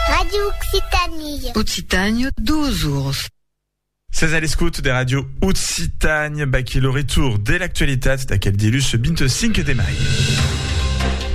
Radio Occitanie. Occitanie, duos ors. Ses a l'escout de Radio Occitanie, baquí lo retour de l'actualitat d'aquel dilus 25 de mai.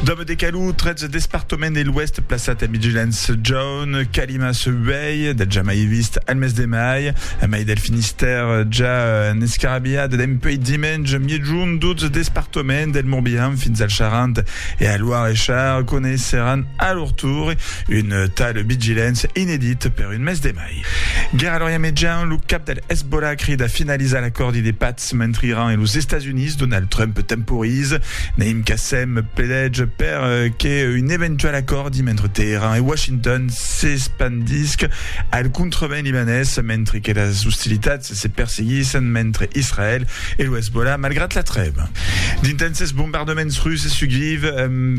Dom de Calou, 13 departament de l'Ouest plaçat a Vigilance John, Calima se vei, de ja mai vist al mes de mai, a mai del Finistère ja en escarabiat d'empei dimenj miejun 12 departament del Morbihan fins al Charente E al Loir e Char coneisseràn a lor tour un tal Bigilens inedit per un mes de mai. Gera lor iamejan, lo cap del Hezbollah crida finalizar l'acòrdi de patz mentre Iran e los Estats Units, Donald Trump temporize. Naim Qassem pledètz per que un eventual acòrdi mentre Teheran e Washington s'espandisc al contrevent libanés mentre que las ostilitats se perseguissen mentre Israèl e lo Hezbollah malgrat la trèva. D'intènses bombardaments russes suguiv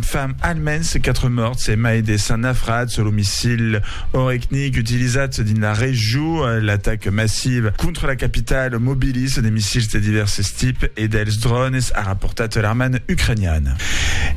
fa almens 4 mòrts e mai de 100 nafrats. Lo missil Orekhnik utilizat dins la regió, l'ataca massiva contra la capitala mobiliza de missils de divèrses tips e dels drònes, a raportat l'armada ucrainiana.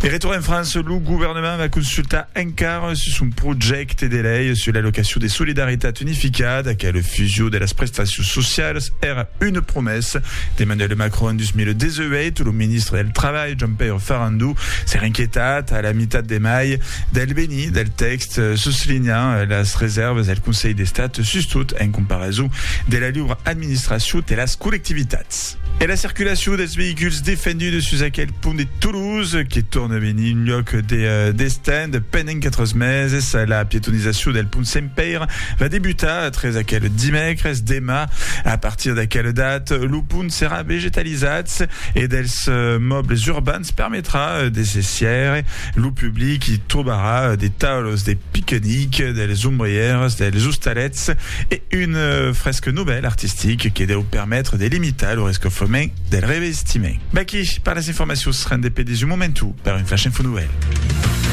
De retorn en França, lo governament va consultar encara Car sus son projècte de lei sus l'allocacion de solidaritat unificada, qu'a la fusion de las prestacions socialas, èra una promessa d'Emmanuel Macron en 2018, lo ministre del Trabalh, Jean-Pierre Farandou, s'èra inquietat a la mitat de mai del benir del tèxt, soslinhant las resèrvas del Conselh d'Estat sustot en comparason de la liura administracion de las collectivitats. Mat. E la circulacion dels veïculs defenduts sus aquel pont de Toulouse, que torna venir un lloc de destent pendent 4 meses. La pietonizacion del pont Sent Pèire va debutar tres aquel dimècres. Demà, a partir d'aquela data, lo pont serà vegetalizat e dels mòbles urbans permetrà de se sièire Lo public i trobarà de taulos de piquenic, dels ombrièrs, dels ostalets e un fresc novèl artistic que deu permetre de limitar lo rescofrement del revestiment. V'aquí per las informacions rendez-pe de su momentu per un Flash Info Novèl.